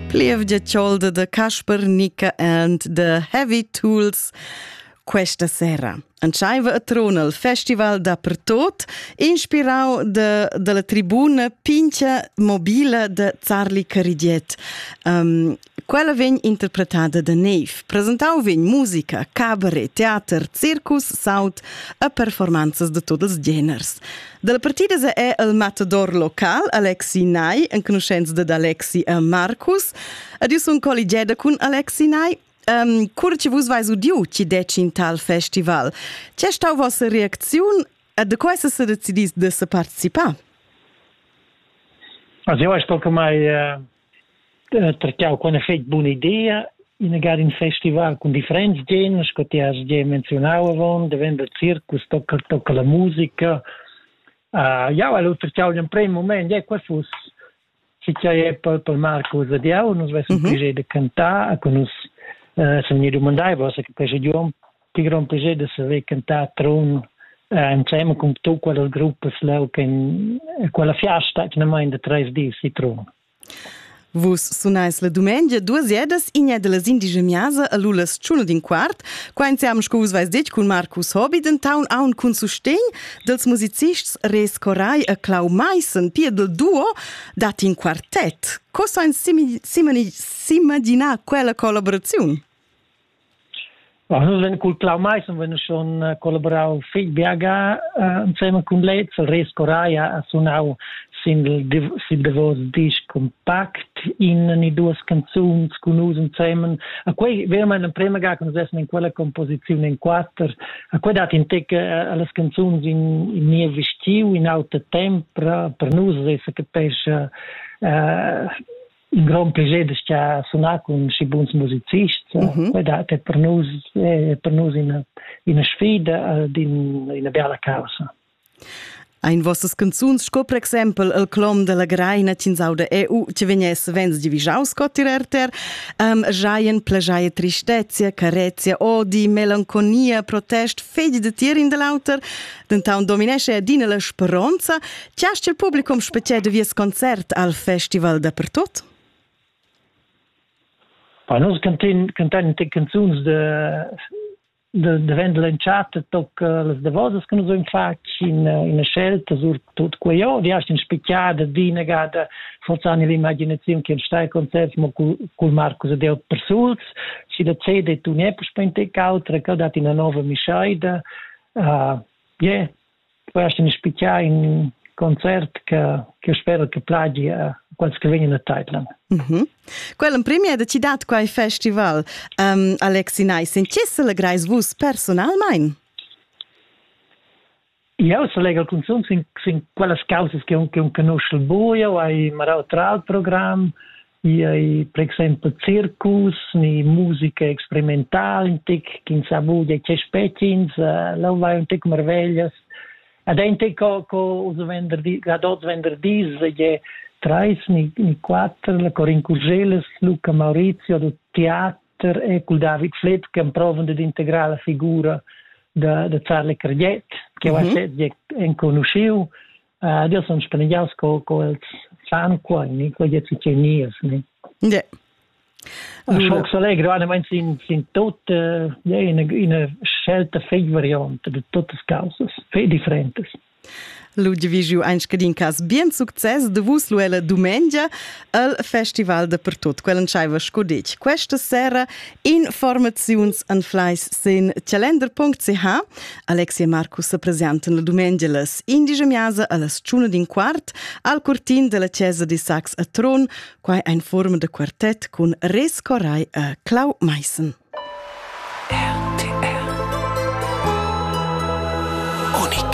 Plievgia ciolda da Casper Nica and The Heavy Tools questa sera. Entscheiva a trona il festival dappertot, inspirau de, dalla tribuna pincha mobila de Zarli Caridiet. Um, Quella vegn interpretada da Neve. Presentau vegn musica, cabaret, teater, circus, saut e performanzas de tots els geners. Dalla partida se è el matador local Alexi Nai, enconuschents dad Alexi e Marcus. Adius un colligeda cun Alexi Nai. Um, cur che vus vais udiu ci deci in tal festival, ce stau vostra reazione e de questa se decidis de se participar? Also, ich denke mal, äh, Tra che ho conoschet bun'ideia, inagad ün festival cun differents geners, co ti has gia menzionau avon, daventa circus, tocca tocca la musica. Jau hal utrtgau gl'emprem mument, eh, quai fuss succeder per per Marcus ed jau, nus vessan pli da cantar, e co nus san gnir dumandai, vossa che quest idiom Ti grond plascher da saver cantar Trun eh, insieme con tu quelle gruppe leu che quella fiasta che non da tres dis di Trun. Vus sunais la dumengia duas edas inia de las indigemiasa a Lulas Ciuno din quart, qua insiam sco vus vais detg cun Marcus Hobby den Town aun cun sustegn dels musicists Res Corai e Clau Meissen, pia del duo, dat in quartet. Cosa in simagina quella collaboraziun? Ma nus vein cul Clau Maissen vein schon collaborau fetg biaga ensemen cun lez. Resco Raia ha sunau sin davos disc compact in ni duas canzuns cun nus ensemen. A quei vermein emprema ga che nus essan in quella composiziun in quater. A quei dat in tec allas canzuns in, in niev vestiu, in auter temps per, per nus, e capescha in grond piacer da sunar cun si buns musicists. Mm -hmm. Quai dat per nus, eh, per nus ina, ina sfida ad in, ina bella causa. Ein vossas canzuns, sco per exempel il clom della Greina Cinsauda EU, ci vegnesse vens divigiau sco tirerter, um, giaien plegiaia tristezia, carezia, odi, melanconia, protest, fedi de tier in dell'auter, dentan dominesce adina la speronza Tgast il publicum spezial de vies concert al festival dapertut? Pa nos cantin cantan te canzuns de de de vendel in chat toc las davosas che nus ein fatg in in scelta sur tut quei vi hast in spicchiada dinegada forzan l'imaginazione che stai concert mo cul Marcus de Persuls si da CD tu ne per spente cautra che dat in nova mischaida uh, yeah quest in spicchar in concert che che spero che plagi a quels che vegnan a Thailand. Mm -hmm. Quella in premier da citat quai festival. Um, Alexi Nice, in chi selegrais vus personalmein? Io selegro cunzunt sin, sin quellas causas che un, che un conosce il buio, hai marau tra il programm, Chi ei per exempel circus ni musica experimental un tic ch'ins ha vudia che spetgins eh, lo vai un tic marveglias Ad ente co co us venderdi ad oz venderdis je trais ni, ni quattro la Corin Curgeles, Luca Maurizio do teater e col David Flitt che provan ad integrare la figura da, da Charlie Cardiet che mm -hmm. è enconosciu Ed io sun spaneggià sco co els san qua, in quai è succedì nies. Yeah. Un schoc s'allegro animant sin sin tot eh, in in scelta fei variante de totes causas fei differentes. Ludwig ju ein scadin cas bien success de vus luella dumengia al festival de per tot quel entscheiva sco detg questa sera Informaziuns anfleis sin calender.ch. Alexi e Marcus se presentan la dumengia las indige miasa allas tschuna d'in quart al cortin della chiesa di Sax a Tron, quai ein forma de quartett cun Res Corai e Clau Meissen. RTR Unik